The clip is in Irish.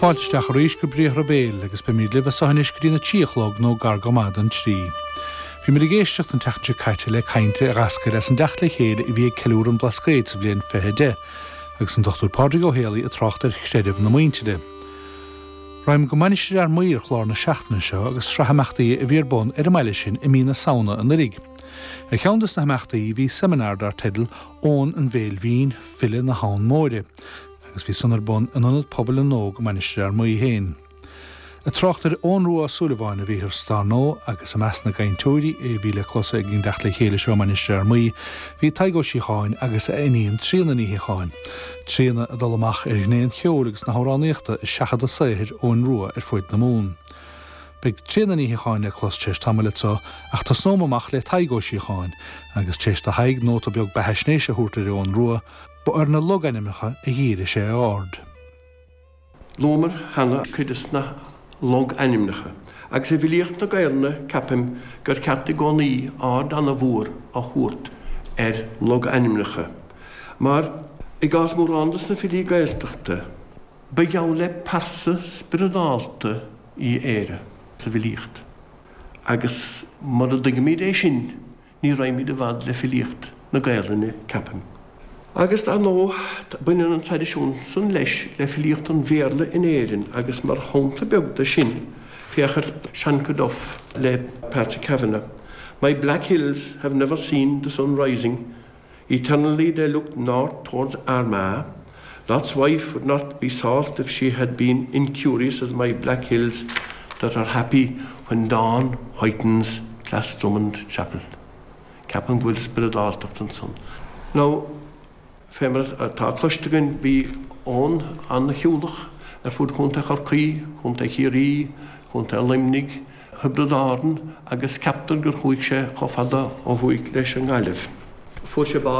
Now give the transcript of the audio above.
Fáilte isteach arís go Briathra Béil agus beimid libh a sothain anois go dtí na trí a chlog nó gar go maith don trí. Bhí muid ag éisteacht an tseachtain seo caite le caint a eascair as an dteacht le chéile a bhí ag Ceiliúradh an Bhlascaoid sa bhliain 2010, agus an Dr. Pádraig Ó Héalaí ag trácht ar chreideamh na muintire. Raghaimid go Mainistir Fhear Maí ar chlár na seachtaine seo agus sraith imeachtaí a bhí ar bun ar an mbaile sin i mí na Samhna anuraidh. Ar cheann de na himeachtaí bhí seimineár dar teideal Eoghan an Bhéil Bhinn, file na hAbhann Móire, agus bhí san ar bun in Ionad Pobail na nÓg i Mainistir Fhear Maí féin. Ag trácht ar Eoghan Rua Ó Súilleabháin a bhíothar dar ndóigh agus i measc na gcainteoirí a bhí le clos ag an dteacht le chéile seo i Mainistir Fhear Maí bhí Tadhg Ó Síocháin agus a iníon Tríona Ní Shíocháin. Tríona ag dul amach ar ghné an cheoil agus na hamhránaíochta i seachadadh saothair Eoghain Rua ar fud na Mumhan. Beidh Tríona Ní Shíocháin le clos téis tamaill anso ach tosnóm amach le Tadhg Ó Síocháin agus téis do Thadhg nóta beag beathaisnéise a thabhairt ar Eoghan Rua, ba ar na logainmneacha a dhírigh sé a aird. Luamar cheana cuid des na logainmneacha agus i bhfilíocht na Gaelainne ceapaim gur ceart i gcónaí aird ana mhór a thabhairt ar logainmneacha mar i gcás mórán des na filí Gaeltachta ba gheall le pearsa spioradálta í Éire sa bhfilíocht agus mura dtuigimid é sin ní raghaimid i bhfad le filíocht na Gaelainne, ceapaim. Agus dar ndóigh, baineann an traidisiún san leis le filíocht an Bhéarla in Éirinn agus mar shampla beag de sin, féach ar Shancoduff le Patrick Kavanagh, 'My black hills have never seen the sun rising, eternally they look north towards Armagh, Lot's wife would not be salt if she had been incurious as my black hills that are happy when dawn whitens Glassdrummond Chapel. Ceapaim go bhfuil spioradáltacht ansan. Now, fé mar atá cloiste againn, bhí Eoghan an-shiúlach ar fud Chontae Chorcaí, Chontae Chiarraí, Chontae Luimnigh, Thiobraid Árann agus ceaptar gur chuaigh sé chomh fada ó thuaidh leis an nGaillimh. Fuair sé bás